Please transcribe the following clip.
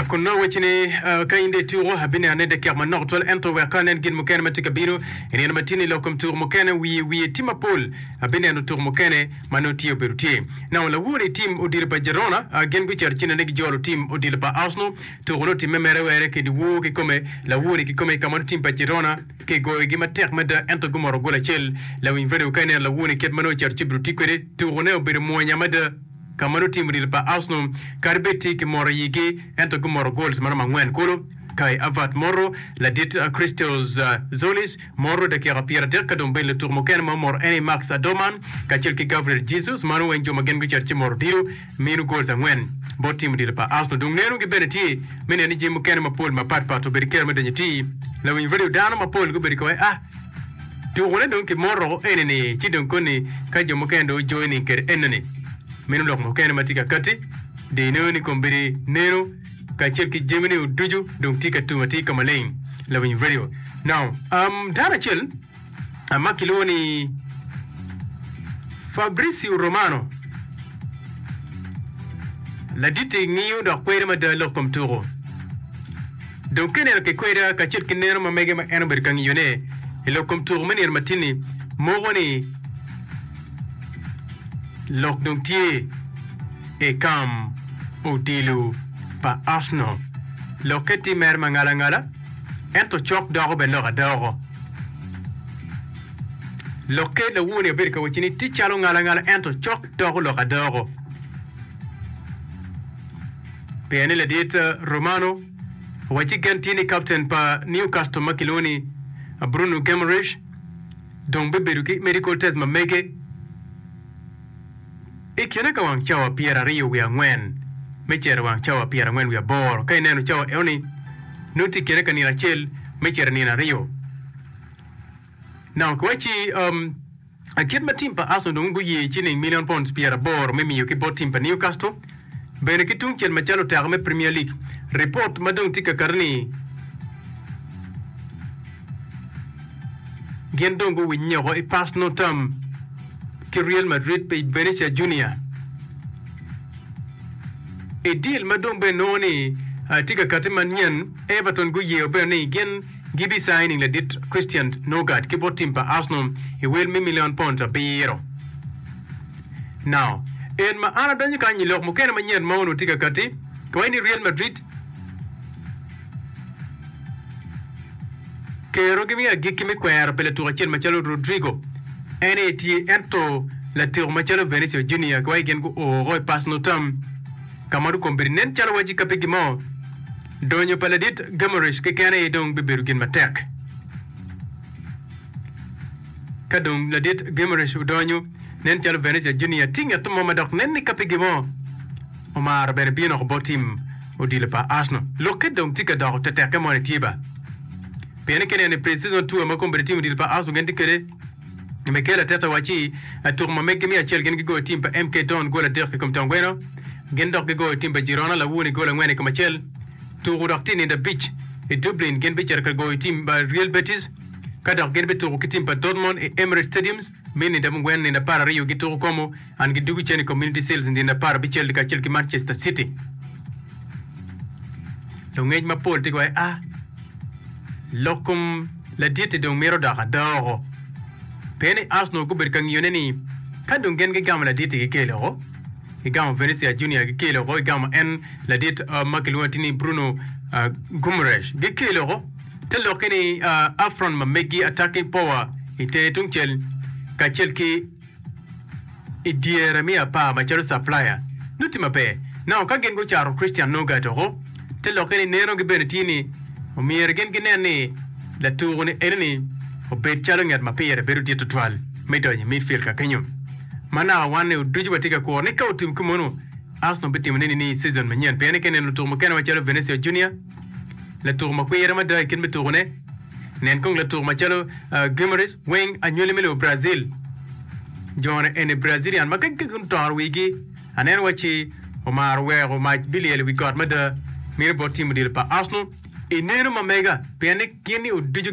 Kun nongo wacci ni, Ka in dong ituko, abineno nen dakika manok tutwal, ento wek ka anen gin mukene ma tye ka bino i nino matino i lok kom tuko mukene, wiye wiye tim mapol, abineno tuko mukene ma nongo tye obedo tye. Nongo lawor i tim odilo pa Girona gin gucito cinane gijolo tim odilo pa Arsenal. Tuko-nu otimme mere were kedi wor kikome, lawor-ri kikome, ka ma nongo tim pa Girona kigoyogi matek mada ento gumoto gol acel. Lawiny redio ka ineno lawor-ni kit ma nongo ocito ci obedo tye kwede, tuko-ne obedo mwonya mada. ka ma lutino odilo pa Arsenal kadi bed tye ki mot iyigi ento gumoto goals maromo angwen kulu. Kai Havertz moto, ladit Christos Zolis moto dakika pyera dek ka dong bene lutuku mukene ma omoto ene Marx Adomah kacel ki Gabriel Jesus mano weng jo ma gin gucito ci moto odilo mino goals angwen bot tim odilo pa Arsenal dong neno gi bene tye me neno ni jami mukene mapol mapat pat obedo kero me donyo iti lawiny radio dano mapol gubedo kawai ah Tukone dong kimoto enini ci dong koni ka jo mukene dong ojoining kede enoni. Meno lok mukene ma tye ka katti dino ni kombedi neno kacel ki jami ni oducu dong tye ka tum atir ka maleng. Lawiny Radio. Now, um, dano acel um, ma kilwongo ni Fabrizio Romano laditi ngiyo dok kwede mada lok kom tuku. Dong ka ineno kikweda kacel ki neno ma mege ma en obedo ka ngiyone i lok kom tuko me nino matinni, moko ni lok dong tye i kam odilo pa Arsenal. Lokke tye mere ma ngala ngala, ento cok doko bene lok adooko. Lokke lawoni abedo ka wacci ni tye calo ngala ngala ento cok doko lok adooko. Pien ni ladit Romano wa ci gen tye ni kapten pa Newcastle ma kilwongo ni Bruno Guimaraes dong bibedo ki medical test ma mege i kine ka wang cawa pyeraryo wiye angwen me cito wang cawa pyerangwen wiye aboro. Ka ineno cawa enoni, nongo tye i kine ka nino acel me cito i nino aryo. Now kiwaci um, Kit ma tim pa Arsenal dong guye ciling milion pounds pyeraboro me miyo ki bot tim pa Newcastle bene ki tungcel macalo oteka me Premier League, ripot ma dong tye ka kati ni gin dong guwinye woko i Parsnal Town ki Real Madrid pa i Venetia Junior. I deal ma dong bene nongo ni tye ka kati manyen, Everton guyeyo bene ni gin Gibi signing ladit Christian Norgaard ki bot tim pa Arsenal i wel me million pounds abiro. Now, en ma an adonyo kany i lok mukene manyen ma onongo tye ka kati kwai ni Real Madrid kero gimi agikki me kwero pi latuk acel macalo Rodrygo, en aye tye ento lateku macalo Venicio Junior kwai gin gu o woko i personal term ka ma dong kombedo nen calo waci ka pe gimo. Donyo pa ladit Gamaresh keken aye dong bibedo gin matek. Ka dong ladit Gamaresh odonyo, nen calo Venezia Junior tye nget mo ma dok nen ni ka pigi mo omaro bene bino oko bot tim odilo pa Arsenal. Lokke dong tye ka doko tetekke moni tye ba? Pienni kineno i pre-season tour ma kombeddi tim odilo pa Arsenal gin tye kwede, Me kelo atit ta wacci tuku ma megi me acel gin gigoyo tim pa MK Don gol adek i kom Tom Gweno, gin dok gigoyo tim pa Girona lawuni gol angwen i kom acel. Tuku dok tye nindo abic i Dublin gin bicito ka goyo tim pa Real Betis ka dok gin bituku ki tim pa Dortmund i Emirates Stadiums me nindo mungwen nindo apar aryo gituku komo An gi dugu cen i Community Seals nino apar abicel dye kacel ki Manchester City. Lungec mapol tye gwaye a lok kom laditi dong mito dok adoko. Pien ni Arsenal gubedo ka ngiyone ni ka dong gin gigamo laditi gikele oko, gigamo Venezia Junior gikele oko, gigamo en ladit uh, ma kilwongo ti ni Bruno uh, Guimaraes gikele oko, te lokke ni uh, Afron ma meggi attacking power i tenge tungcel kacel ki I dyere me apar macalo caplaya nongo tye maber nongo ka gin gucato Christian Nurgaard oko te lokke ni neno gi bene tye ni omyero gin ginen ni latuko ni enoni obed calo nget ma pire bedo dit tutwal me donyo i midfield ka kenyo. Ma naka wan ni oducu watye ka kuro ni ka otim ki mono Arsenal bitimo ne nining i season manyen pien i keneno lutuko mukene macalo Venecio Junior, Latuk ma kwire mada i kit me tukune, nen kong latuk macalo Guimarães weng anywali me lobo Brazil. Jone eni Brazilian ma kagi gutoro wigi anena waci omaro weko mac bilyel i wi got mada mine bot tim odilo pa Arsenal. Ineno ma mega pien ni gin ni oducu